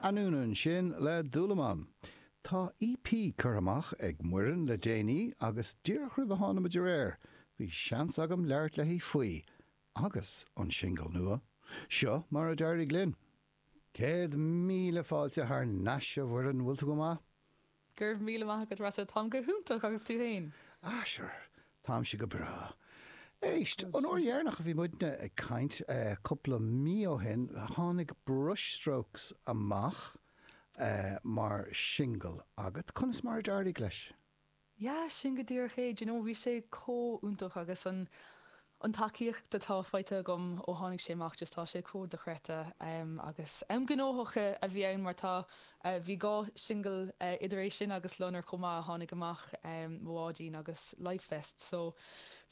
Anonn ansin le Dúlamán. Tá EP curtha amach ag Muireann le déanaí agus díreach roimh a tháinig muid aréir bhí seans agam labhairt léi faoi agus an singil nua, seo mar a d'éirigh linn. Céad míle fáilte thar nais a Mhuireann, bhfuil tú go maith? Go raibh míle maith agat Rossa, táim go hiontach agus tú féin? Ah sure, táimse go breá. Éist, an uair dheireanach a bhí muidne ag caint, cúpla mí ó shin, tháinig Brushstrokes amach mar singil agat, conas mar a d'éirigh leis? Yeah, sin go díreach é. Do you know, bhí sé chomh iontach agus an, an tacaíocht atá faighte agam ó tháinig sé amach, just tá sé chomh dochreidte. Em, agus, em, gnóthach a bhí ann mar tá, eh, bhí dhá singil, eh, idir é sin agus Loinnir chomh maith a tháinig amach, em, Mo Bháidín agus Lifevest. So,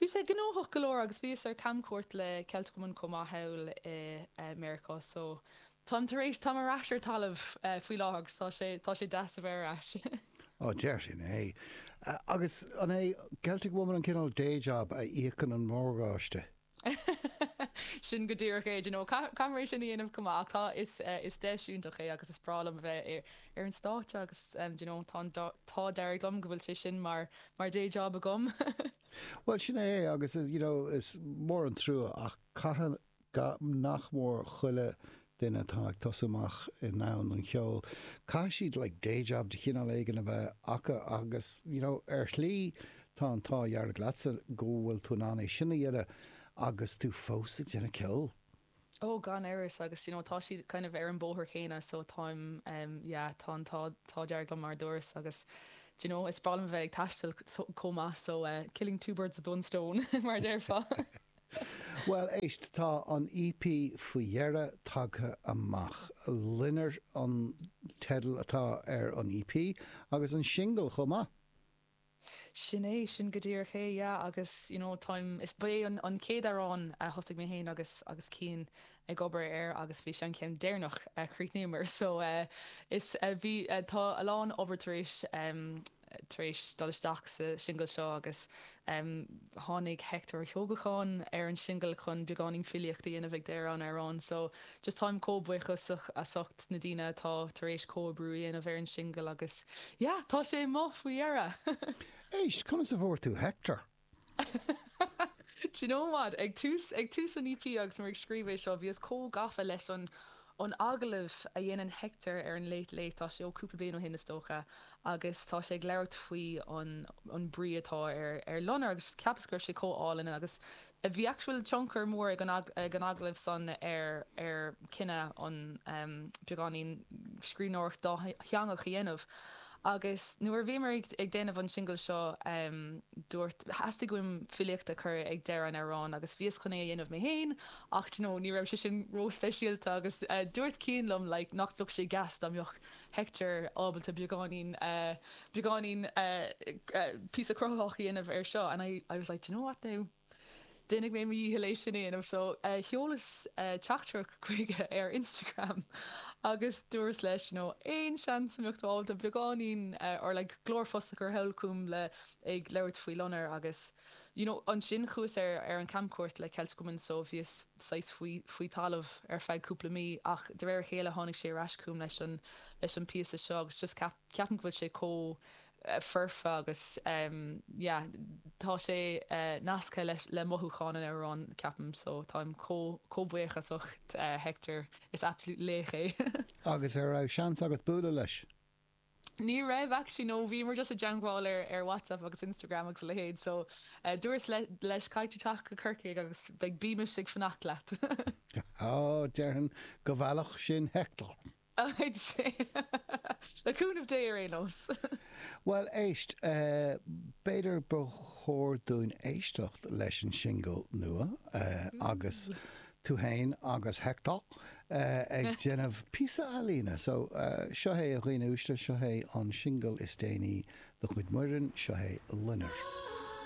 bhí sé gnóthach go leor agus bhíos ar camchuairt le Celtic Woman chomh maith thall i, eh, Meiriceá. So. Táim tar éis, táim ar ais ar talamh faoi láthair agus tá sé, tá sé deas a bheith ar ais. Á, déarfainn é. Agus an é Celtic Woman an cineál day job a íocann an morgáiste? Sin go díreach é, d'you know, caithfear é sin a dhéanamh chomh maith. Ach tá, is, is deis iontach é agus is breá liom a bheith ar, ar an stáitse agus d'you know, tá an, tá, d'éirigh liom go bhfuil sé sin mar, mar day job agam. Bhuel, sin é agus is, you know, is mór an trua ach caithfidh, Go nach mór chuile duine atá ag tosú amach i ndomhan an cheoil, caithfidh siad like day job de chineál éigin a bheith acu agus you know ar shlí tá an t-ádh dearg leatsa go bhfuil tú in ann é sin a dhéanamh agus tú fós ag déanamh ceoil. Oh gan amhras agus d'you know tá siad kind of ar an bhóthar chéanna so táim em yeah tá an t-ádh dearg liom mar a dúras agus d'you know is breá liom a bheith ag taisteal chomh maith so eh killing two birds with one stone mar a déarfá. Bhuel, éist, tá an EP faoi dheireadh tagtha amach. 'Loinnir' an teideal atá ar an EP, agus an singil chomh maith. Sin é, sin go díreach é, yeah, agus, you know, táim, is, ba é an chéad amhrán a thosaigh mé féin agus, agus Cian ag obair air agus bhí sé an ceann deireanach a chríochnaíomar so is bhí tá a lán obair tar éis tar éis dul isteach sa singil seo agus tháinig Hector Ó hEochagáin ar an singil chun beagáinín filíocht a dhéanamh ag deireadh an amhráin so just táim chomh buíochasach as ucht na daoine atá tar éis comhoibriú a dhéanamh ar an singil agus yeah tá sé amuigh faoi dheireadh! Éist, conas a fuair tú Hector? Do you know what? Ag tús, ag tús an EP agus mé ag scríobh é seo, bhíos chomh gafa leis an, an agallamh a dhéanann Hector ar an Late Late, tá sé ó cúpla bliain ó shin is dócha, agus tá sé ag labhairt faoi an, an brí atá ar, ar Loinnir agus cheapas go raibh sé chomh álainn agus bhí actual tionchar mór ag an, ag an agallamh san ar, ar chinneadh an, ehm, beagáinín scríbhneoireachta dátheangach a dhéanamh. Agus nuair a bhíomar ag déanamh an singil seo dúirt, theastaigh uaim filíocht a chur ag deireadh an amhráin agus bhíos chun é a dhéanamh mé féin ach do you know ní raibh sé sin ró-speisialta agus dúirt Cian liom like nach bheadh sé deas dá mbeadh Hector ábalta beagáinín beagáinín píosa cruthaitheach a dhéanamh air seo and I I was like do you know what now Déanfaidh mé mo dhícheall é sin a dhéanamh. So, sheolas teachtaireacht chuige ar Instagram agus dúras leis you know aon seans a mbeadh tú ábalta beagáinín or like glórphost a chur anall chugam le ag labhairt faoi Loinnir agus you know ansin chuas ar ar an camchuairt le Celtic Woman so bhíos saghas faoi faoi talamh ar feadh cúpla mí ach de réir a chéile tháinig sé ar ais chugam leis an leis an píosa seo agus just ceap ceapaim go bhfuil sé chomh foirfe agus yeah tá sé nasctha leis le mothúcháin an amhráin ceapaim so táim chomh buíochasach Hector is absolute laoch é. Agus ar raibh seans agat bualadh leis? Ní raibh actually no bhíomar just i dteagmháil ar ar WhatsApp agus Instagram agus a leithéid so dúras leis caithfidh tú teacht go Corcaigh agus beidh bímis ag fanacht leat. Ó, déarfainn go bhfeilfeadh sin Hector. I'd say, le cúnamh Dé ar aon nós! Bhuel, éist, b'fhéidir ba chóir dúinn éisteacht leis an singil nua agus tú fhéin agus Hector ag déanamh píosa ealaíne. So, seo é a dhaoine uaisle, seo é an singil is déanaí de chuid Muireann, seo é Loinnir.